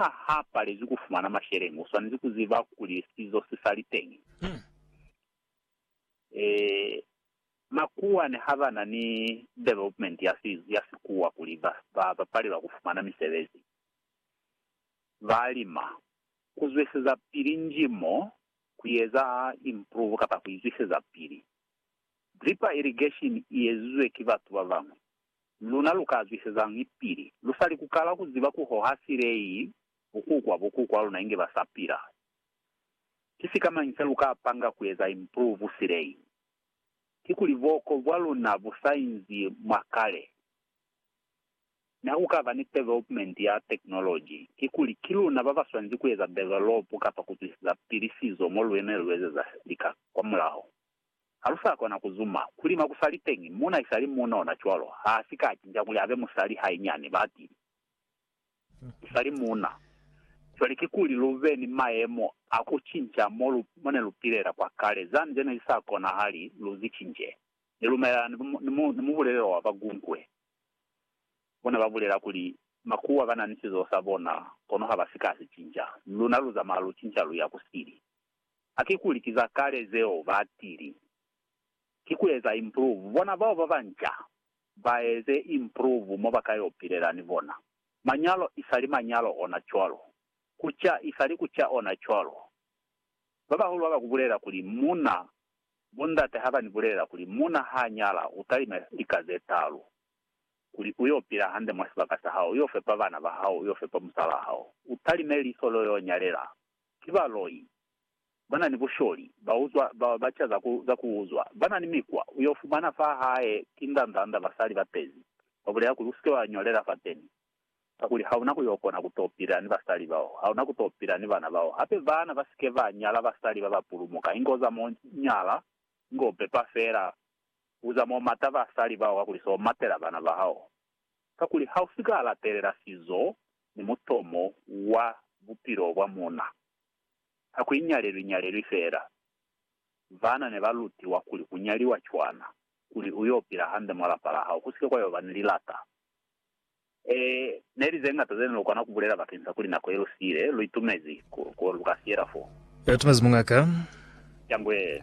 Fa ha palezwi ku fumana masheleñi, u swanezi ku ziba kuli sizo si sa li teñi. Ee, makuwa ne ha ba na ni development ya sizo, ya sikuwa kuli ba, ba, ba palelwa ku fumana misebezi. Ba lima, ku zweseza pili nji mo, ku eza improve kapa ku izwiseza pili. Drip irrigation i ezizwe ki batu ba bañwi. luna lu ka zwisezañi pili lu sa li ku kala ku ziba ku hoha silei bukukwa bukukwa luna inge ba sa pila? Ki sikamañi se lu ka panga ku eza improve silei? Kikuli buoko bwa luna bu sa inzi mwa kale. Mi ha ku ka ba ni development ya technology, kikuli ki luna ba ba swanezi ku eza develop kapa ku zwiseza pili sizo mo lu eme lu ezeza lika kwamulaho. Ha lu sa kona ku zuma, ku lima ku sa li teñi, muuna i sa li muunona cwalo, ha a si ka cinca kuli a be musali hainyani, ba ti. U sa li muuna. Cwale kikuli lu be ni mayemo a ku cinca mo lu, mo ne lu pilela kwa kale, zani ze ne zi sa konahali lu zi cince. Ni lumelana ni, ni, mu, ni mubulelelo wa Bagunkwe. Bo ne ba bulela kuli, Makuwa ba na ni sizo sa bona, kono ha ba si ka si cinca. Luna lu zamaya lu cinca lu ya ku sili. a kikuli ki za kale zeo ba tili. Ki ku eza improve. Bona bao ba banca ba eze improve mo ba ka yo pilela ni bona. Manyalo isali manyalo ona cwalo. Ku ca isali ku ca ona cwalo. Ba bahulu ha ba ku bulela kuli muna, bo ndate ha ba ni bulela kuli muna ha nyala u talima lika ze talu, kuli u yo pila hande mwa sibaka sa hao, u yo fepa bana ba hao, u yo fepa musalaa hao, u talime liso lo yo nyalela ki baloi, ba na ni busholi, ba uzwa, ba, ba ca za ku, za ku uzwa, ba na ni mikwa, u yo fumana fa hae ki ndanzanda basali ba pezi, ba bulela kuli, U si ke wa ñolela fateni, kakuli ha u na ku yo kona ku to pila ni basali bao, ha u na ku to pila ni bana bao. Hape bana ba si ke ba nyala basali ba ba pulumuka, inge u za mo nyala, inge u pepa fela, u za mo mata basali bao, kakuli se u matela bana ba hao. kakuli ha u si ka latelela sizo ni mutomo wa bupilo bwa muuna, ha ku inyalelwi-nyalelwi feela. Baana ne ba lutiwa kuli ku nyaliwa cwana kuli u y'o pila hande mwa lapa la hao, ku si ke kwa y'o ba ni lilata. Ee, ne li ze ñata ze ne lu kona ku bulela bakeñisa kuli nako ye lu siile, lu itumezi ku, ku lu ka siyela fo. Lu itumezi muñ'a ka. Cangwe.